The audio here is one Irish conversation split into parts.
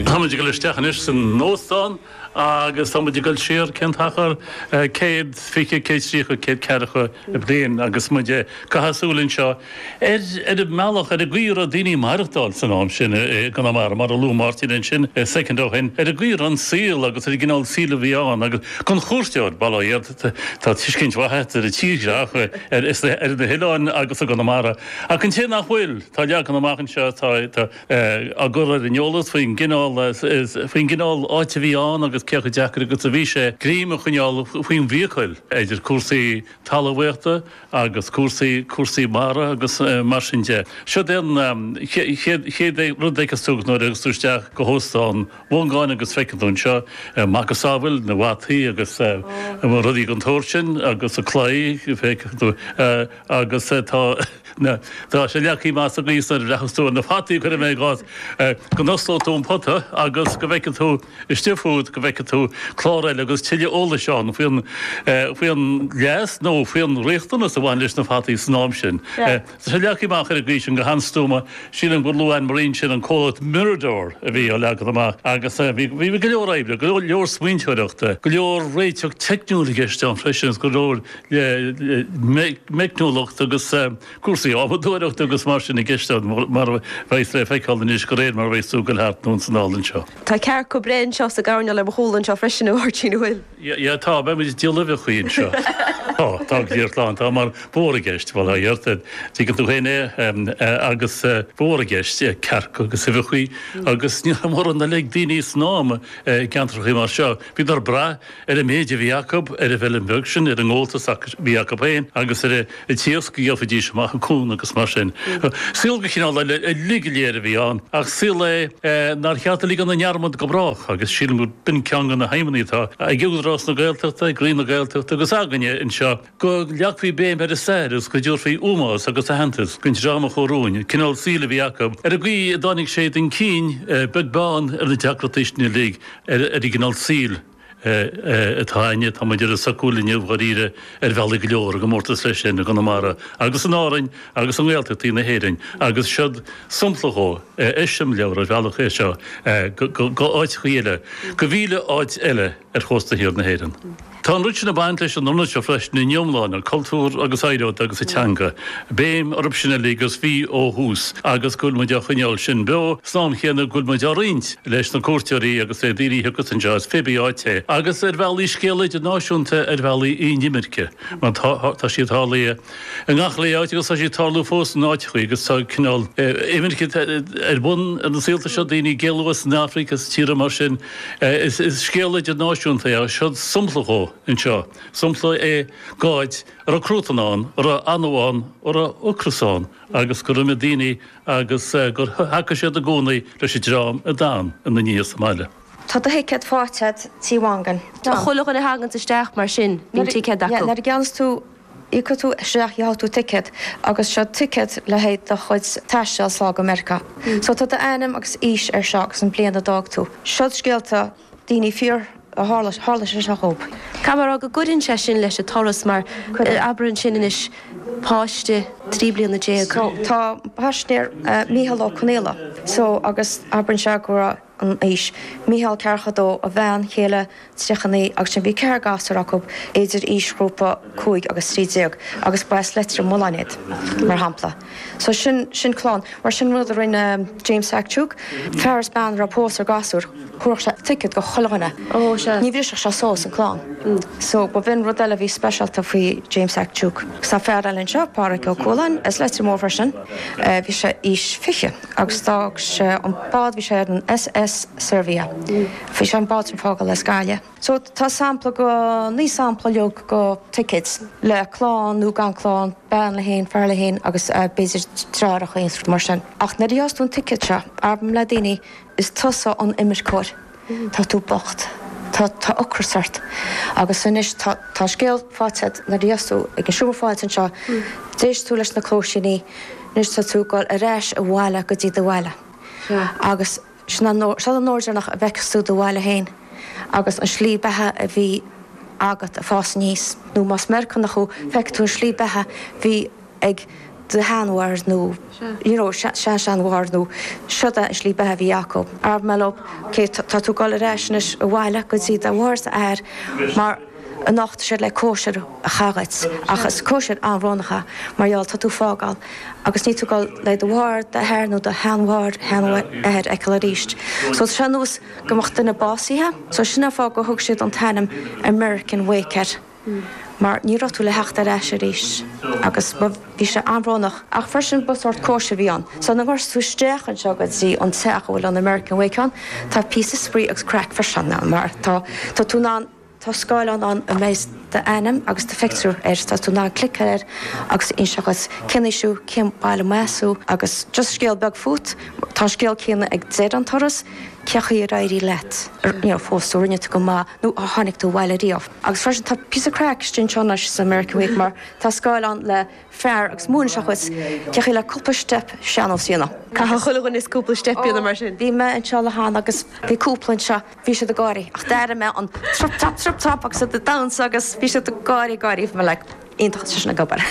Táimid ag dul isteach anois san óstán agus táimid ag dul siar cén t-achar? céad fiche, céad tríocha, céad ceathracha bliain agus muid ag caitheamh súil anseo ar an mbealach ar an gcaoi a raibh daoine ag maireachtáil san am sin i gConamara, mar a luaigh Máirtín ansin soicind ó shin, ar an gcaoi a raibh an saol agus ar an gcineál saoil a bhí ann agus don chuairteoir, bail ó Dhia tá tuiscint mhaith ar an tírdhreach, ar na hoileáin agus i gConamara. Ach an té nach bhfuil, tá leagan amach anseo atá á chur ar an eolas faoin gcineál, faoin gcineál áit a bhí ann agus cé chomh deacair agus a bhí sé greim a choinneáil faoin bhfiacail, idir cúrsaí talmhaíochta agus cúrsaí, cúrsaí mara agus mar sin de. Seo den chéad, chéad rud a chasfas ort nuair a thiocfas tú isteach go hÓstán Mhongáin agus feicfidh tú anseo macasamhail na bhfataí agus rudaí den tsórt sin agus an claí, feicfidh tú. Agus tá tá sé leagtha amach sa gcaoi nuair a bhreathnós tú ar na fataí cuirfidh mé i gcás go n-osclóidh tú an pota agus go bhfeicfidh tú istigh fút go bhfeicfidh tú clár eile agus tuilleadh eolais ann faoin faoin leas nó faoin riachtanas a bhain leis na fataí san am sin. Tá sé leagtha amach ar an gcaoi sin go han-stuama. Sílim gur luaigh Anne Marie ansin an comhlacht Mirador a bhí á leagan amach agus bhí bhí go leor oibre go leor smaointeoireachta go leor réiteach teicniúil i gceist ann freisin agus go leor le meicniúlacht agus cúrsaí adhmadóireachta agus mar sin i gceist ann, mar a bheas le feiceáil anois de réir mar a bheas tú ag goil thart ins an ionad seo. Tá cearca ag breith anseo sa gcoirnéal ar mo chúl anseo freisin, a Mháirtín, an bhfuil? Ya, tá, beimid ag díol uibheachaí anseo. Tá, tá an gliar slán, tá, mar bhíodar i gceist, bhuel, a fhios a'd, tuigeann tú féin é, agus bhíodar i gceist, cearca agus uibheachaí agus ní raibh mórán eile ag daoine san am i gceantrachaí mar seo, bhíodar ag brath, ar an méid a bhí acu, ar an bhfeilm bheag sin, ar an ngabháltas a bhí acu féin agus ar an t-iasc a gheofaidís amach an cuan agus mar sin. Saol de chineál eile uilig go léir a bhí ann ach saol é nár cheart a ligean i ndearmad go brách agus sílim gur b'in ceann de na haidhmeanna atá ag Údarás na Gaeltachta, ag Roinn na Gaeltachta agus againne anseo, go leagfaí béim ar an stair agus go dtabharfaí ómós agus aitheantas don dream a chothú an cineál saoil a bhí acu, ar an gcaoi a dtáinig siad chun cinn, beag beann ar na deacrachtaí sin uilig, ar an gcineál saoil atá againne, atá muid ar a sócúl inniu, dháiríre, ar bhealaí go leor, i gcomórtas leis sin i gConamara agus in Árainn agus i nGaeltachtaí na hÉireann. Agus siúd sampla dhó, eiseamláir, ar bhealach, é seo, go áiteachaí eile, go mhíle áit eile ar chósta thiar na hÉireann. Tá an rud sin ag baint leis an ionad seo freisin ina iomláine, cultúr agus oidhreacht agus an teanga, béim orthu sin uilig agus bhí ó thús agus go bhfuil muid á choinneáil sin beo san am chéanna go bhfuil muid á roinnt leis na cuairteoirí agus le daoine a thiocfas anseo as pé bí áit é agus ar bhealaí scéal idirnáisiúnta ar bhealaí an imirce mar tá siad tarlaithe i ngach uile áit agus tá siad ag tarlú fós in áiteachaí agus tá cineál imirce ar bun ar na saolta seo, daoine ag éalú as an Afraic, as tíortha mar sin. Is scéal idirnáisiúnta é. Seo sompla dhó anseo. Sompla é d'áit a raibh cruatan ann, a raibh anó ann, a raibh ocras ann agus gur imigh daoine agus gur thacaigh siad i gcónaí leis an dream a d'fhan ina ndiaidh sa mbaile. Tá do thicéad faighte agat Tí Mhongáin. Tá chuile dhuine a thaganns isteach mar sin bíonn ticéad acu. Nuair a gheobhas tú. Íocfaidh tú isteach, gheobhaidh tú ticéad agus seo ticéad le haghaidh do chuid taistil sall go Meiriceá. So tá d'ainm agus aois air seo agus an bliain a d'fhág tú. Seo scéalta daoine fíor a tharla, tharla sé seo dhóibh. Tá mé ag rá go gcuireann sé sin leis an turas mar abair ansin anois páiste trí bliana déag. So tá páiste air, Mícheál Ó Conaola, so agus abair ansin go raibh, an aois, Micheál ceathracha dó, a bhean chéile tríocha naoi agus ansin bhí ceithre gasúr acu idir aoisghrúpa cúig agus trí déag agus ba as Leitir Mealláin iad mar shampla. So sin, sin clann. Mar sin rud a rinne James Hack Tuke, fear is bean a raibh pósta is gasúir, thabharfadh sé ticket go chuile dhuine. Oh sea. Ní bhrisfeadh sé suas an clann. So ba shin rud eile a bhí speisialta faoi James Hack Tuke. So fear eile anseo, Páraic Ó Cualáin as Leitir Mór freisin, bhí sé aois fiche. agus d'fhág sé an bád, bhí sé ar an SS Servia, bhí sé an bád sin ag fágáil as Gaillimh. So tá sampla go, naoi sampla dhéag go tickets le clann nó gan clann, bean léi féin, fear leis féin agus b'fhéidir deartháireacha in éineacht mar sin. Ach nuair a gheobhas tú an ticket seo, abraim le daoine is tusa an imirceoir. tá tú bocht, tá ocras ort agus anois tá an scéal faighte agat nuair a bhíos tú ag an seomra fáilte anseo, d'éist tú leis na cluaisíní, anois tá tú ag dul ar ais abhaile go dtí do bhaile. Agus sin an uair deireanach a bhfeicfeas tú do bhaile féin agus an slí beatha a bhí agat ag fás aníos, nó más Meiriceánach thú, feicfidh tú an slí beatha a bhí. ag do shean-mháthair nó you know sean-sean-mháthair nó seod a' slí beatha a bhí acu. Abraim leo, okay tá tú goil ar ais anois abhaile go dtí do mháthair 's d'athair mar anocht tá siad le cóisir a chaitheamh dhuit ach is cóisir an-bhrónach í mar gheall tá tú ag fágáil agus níl tú goil le do mháthair, d'athair nó do shean-mháthair, shean-athair a fheiceáil arís. So ar nós go mbeadh duine básaithe so sin a' fáth gur thug siad an t-ainm American Wake air. mar ní raibh tú le theacht ar ais arís agus bhí sé an-bhrónach. Ach freisin ba sórt cóisir a bhí ann, so nuair a thiocfas tú isteach anseo go dtí an teach a bhfuil an American Wake ann, tá píosa spraoi agus craic freisin ann mar tá tá tú in ann tá scáileán ann a mbeidh d'ainm agus do phictiúr air, tá tú in ann cliceáil air agus inseoidh siad cén aois thú, cén baile as thú agus just scéal beag fút, tá an scéal céanna ann ag deireadh an turas, cé chaoi ar éirigh leat, you know, phós tú, rinne tú go maith. nó ar tháinic tú abhaile riamh? Agus freisin tá píosa craic istigh anseo anois san American Wake mar tá scáileán le fear agus múineann sé dhuit cé chaoi le cúpla steip sean-nós a dhéanamh. Caithfidh chuile dhuine cúpla steip a dhéanamh mar sin. Bhí mé anseo le hAnn agus bhí cúpla anseo, bhí siad ag gáirí ach d'airigh mé an trup trap trup trap agus iad ag damhsa agus bhí siad ag gáirí ag gáirí. iontach atá seisean ag obair.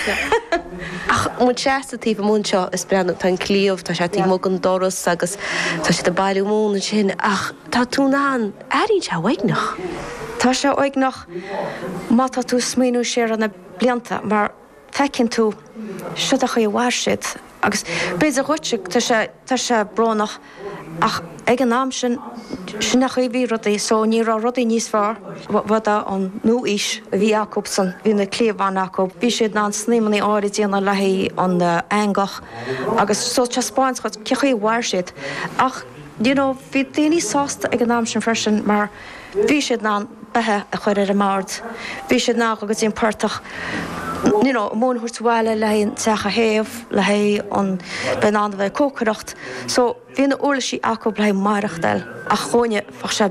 Ach muid seasta taobh amuigh anseo is ag breathnú, tá an cliabh, tá sé taobh amuigh den doras agus tá siad ag bailiú móna ansin ach tá tú in ann airínn sé uaigneach. Tá sé uaigneach má tá tú ag smaoiniú siar ar na blianta mar feiceann tú siod é an chaoi a mhair siad agus b'fhéidir dhuitse tá sé, tá sé brónach, Ach ag an am sin, sin é an chaoi a raibh rudaí so ní raibh rudaí níos fearr, b'in í an nua-aois a bhí acub san, bhí na cliabhanna acub, bhí siad in ann snaidhmeannaí áithrid a dhéanamh le haghaidh an eangach agus so taispeánann sé dhuit cé chaoi a mhair siad. Ach, you know, bhí daoine sásta ag an am sin freisin mar, Bhí siad in ann beatha a chur ar an mbord, bhí siad in ann dhul go dtí an portach, you know, móin a thabhairt abhaile le haghaidh an teach a théamh, le haghaidh an, bheith in ann a bheith ag cócaireacht. So, bhí na huirlisí acub le haghaidh maireachtáil ach dhúinne, bheadh sé.